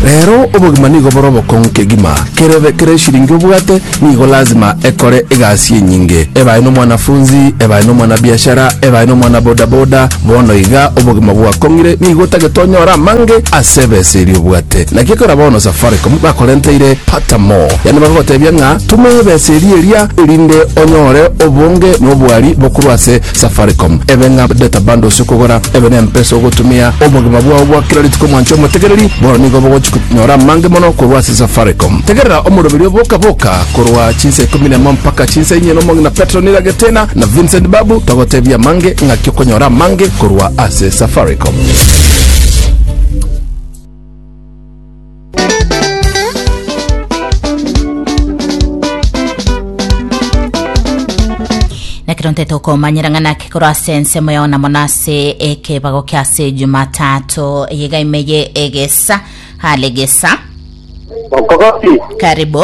Rero obogima nigo bore obokong'u kegima. Kerebe kera eshiringi obwate nigo lazima ekore egasi enyinge. Ebae nomwanafunzi, ebae nomwanabiashara, ebae nomwanabodaboda, bono iga obogima bwakong'ire nigo otagete onyore amange ase ebesa eria obwate. Naki ekero bono Safaricom bakorenteire Pata More, yaani bakagotebia ng'a tuma ebesa eria eria erinde onyore obonge na obwari bokorwa ase Safaricom. Ebe ng'a data bundles okogora ebe nempesa ogotumia obogima bwao bwa kera rituko mwancha omotegereri, bono nigo bogochi konyora amange mono korwa ase Safaricom. Tegerera omoroberi o Boka Boka korwa chinsa ikomi nemo mpaka chinsa inye nomong'ina Petro Niragetena na Vincent Babu togotebia amange ng'aki okonyora amange korwa ase Safaricom. Nekero ntete okomanyera ng'a naki korwa ase ensemo yao na mono ase ekebago kia ase Jumatatu yega imeye egesa hale gesa Okogoki. karibu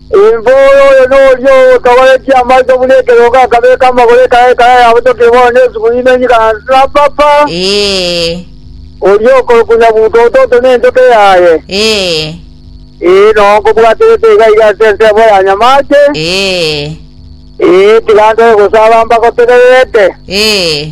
Imboyo oyo noria ogotogoretie amaiso buna ekerogo akabeka amagoro ekaya ekaya yabotokire bono nesuguri ime enyika na nsapapa, Ee, oria okorokwa Nyabuto ototo nenchoka eyaye. ee, Ee, nao nkobwaterete iga iga ase ensemo ya nyamache, ee, ee, tiga ntore gosaba mbagotegererete. ee.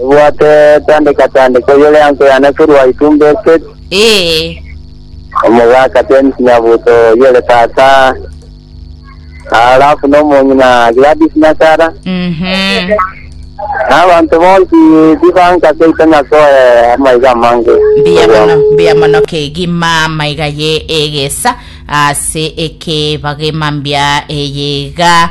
Ebwate tandeka tandeka oyore anso yane korwa itumbo eseri, Ee, omogaka James Nyabuto oyore tata, alafu nomong'ina Gladys Nyakara, mhm. na abanto bonsi tibanka seito nyasoe amaiga amange. mbuya Ogwa- mono mbuya mono kegima maiga ye egesa ase ekebagima mbia eyega